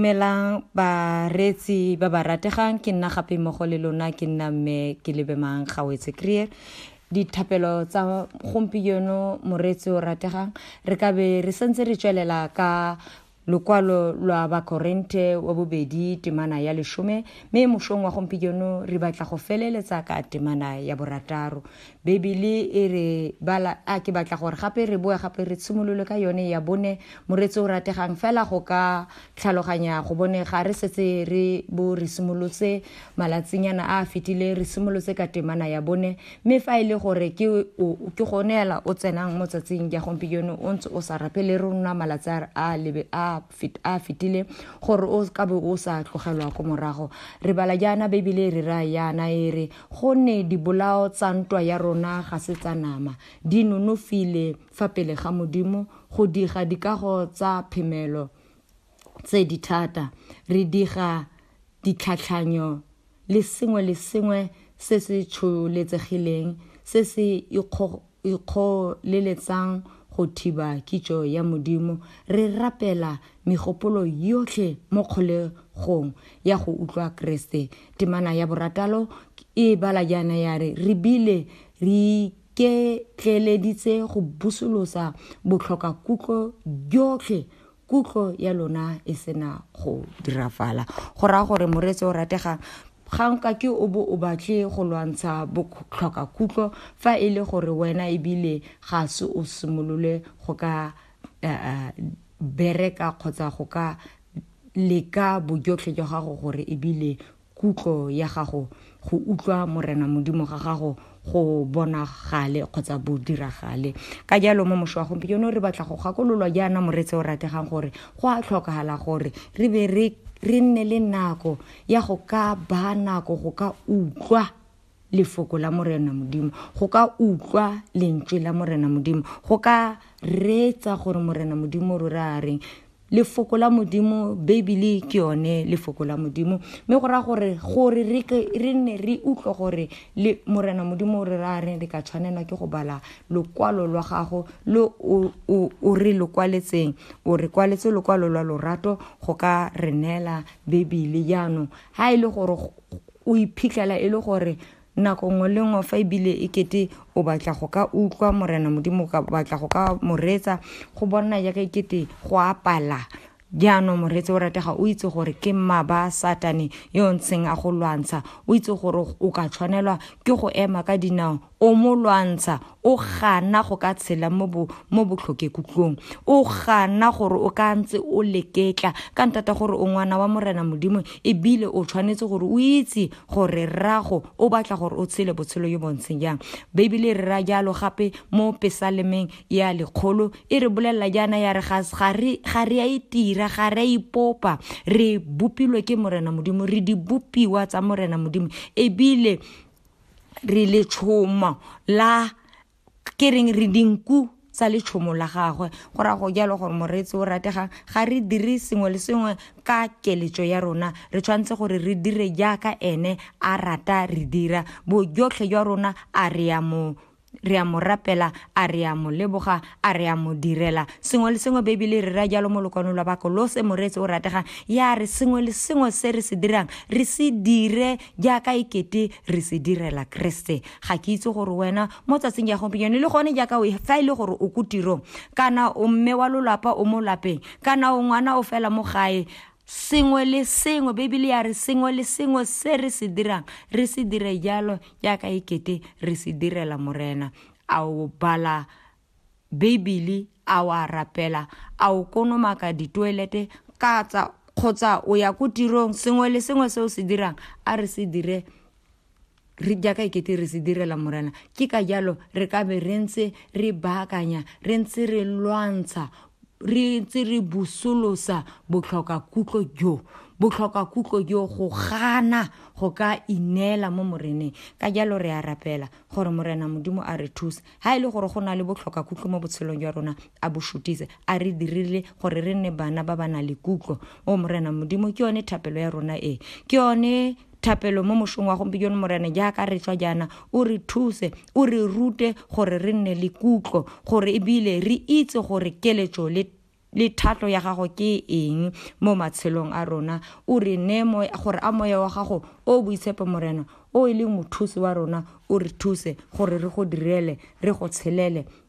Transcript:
Dumelang ba reetsi ba ba rategang ke nna gape mmogo le lona ke nna mme ke lebemang gawetse creer dithapelo tsa gompieno moreetsi o rategang re ka be re sentse re tswelela ka lokwalo lwa bakorente wa bobedi temana ya leshome mme mošong wa gompieno re batla go feleletsa ka temana ya borataro Beibele e re bala, a ke batla gore gape re boe gape re tshimolole ka yone ya bone, moreetsi o rategang fela go ka tlhaloganya go bone ga re setse re bo re simolotse malatsinyana a a fetileng re simolotse ka temana ya bone, mme fa e le gore ke o ke gone hela o tsenang mo tsatsing ya gompieno o ntse o sa rapele rona malatsi a a a fetile gore o ka be o sa tlogelwa ko morago re bala jaana beibele e re ra yana e re gonne dibolao tsa ntwa ya rona ga se tsa nama di nonofile fa pele ga modimo go diga dikago tsa phemelo tse di thata re diga ditlhatlhanyo le sengwe le sengwe se se tsholetsegileng se se ikgoleletsang go thiba kitso ya Modimo, re rapela megopolo yotlhe mo kgolegong ya go utlwa Keresete. Temana ya borataro e bala jaana ya re, Re bile re iketleeleditse go busolosa botlhokakutlo jotlhe kutlo ya lona e sena go dirafala go raya gore moreetsi o rategang ga nka ke o bo o batle go lwantsha botlhoka kutlo fa e le gore wena ebile ga se o simolole go ka uh, bereka kgotsa go ka leka bojotlhe jwa gago gore ebile kutlo ya gago go utlwa morena modimo ga gago go bonagale kgotsa bo diragale ka jalo mo mošo wa gompieno re batla go gakololwa jaana moretse o rategang gore go a tlhokagala gore re be re nne le nako ya go ka ba nako go ka utlwa lefoko la Morena Modimo, go ka utlwa lentswe la Morena Modimo, go ka reetsa gore Morena Modimo rora a reng. Lefoko la Modimo, Beibele ke yone lefoko la Modimo, mme go raya gore gore re nne re utlwe gore le Morena Modimo o re ra reng re ka tshwanelwa ke go bala lokwalo lwa gago lo o re lo kwaletseng o re kwaletse lokwalo lwa lorato go ka re neela Beibele jaanong ga e le gore o iphitlhela e le gore nako nngwe le nngwe fa ebile e kete o batla go ka utlwa morena modimo o batla go ka moretsa go bona jaaka e kete go apala jaanong moretse o ratega o itse gore ke mmaba satane yo ntseng a go lwantsha o itse gore o ka tshwanelwa ke go ema ka dinao o mo lwantsha o gana go ka tshela mo botlhokekutlong o gana gore o ka ntse o leketla ka ntata gore o ngwana wa morena modimo ebile o tshwanetse gore o itse gore rrago o batla gore o tshele botshelo yo bontsheng jang beibele e re ra jalo gape mo pesalemeng ya lekgolo e re bolelela jaana ya re ga re a itira ga re a ipopa re bopilwe ke morena modimo re dibopiwa tsa morena modimo ebile re letshomo la ke reng re dinku tsa letshomo la gagwe go ra go jalo gore moreetsi o rategang ga re dire sengwe le sengwe ka keletso ya rona re tshwanetse gore re dire jaaka ene a rata re dira bojotlhe jwa rona a re ya mo re a mo rapela a re a mo leboga a re a mo direla sengwe le sengwe bebele re ra jalo mo lokwano lwa bako lo se moreetse o rategang ya re sengwe le sengwe se re se dirang re se dire jaaka ekete re se direla keresete ga ke itse gore wena mo tsatsing ya gompieno le gone jaaka o fa e le gore o ko tirong kana o mme wa lolapa o mo lapeng kana o ngwana o fela mo gae sengwe le sengwe bibele ya re sengwe le sengwe se re se dirang re se dire jalo jaaka e kete re se direla morena a o bala bibele a wa rapela a o konomaka ditoelete ka tsa kgotsa o ya ko tirong sengwe le sengwe se o se dirang a re se dire re jaaka ekete re se direla morena ke ka jalo re ka be re ntse re baakanya re ntse re lwantsha re ntse re busolosa botlhokakutlo jo botlhokakutlo jo go gana go ka ineela mo moreneng ka jalo re a rapela gore morena modimo a re thuse ga e le gore go na le botlhokakutlo mo botshelong jwa rona a bo shutise a re dirile gore re nne bana ba ba na le kutlo o morena modimo ke yone thapelo ya rona e ke yone thapelo mo mosong wa gompieno morena jaaka re tswa jaana o re thuse o re rute gore re nne le kutlo gore ebile re itse gore keletso le le thatlo ya gago ke eng mo matshelong a rona o re ne gore a moya wa gago o boitshepo morena o e leng mothusi wa rona o re thuse gore re go direle re go tshelele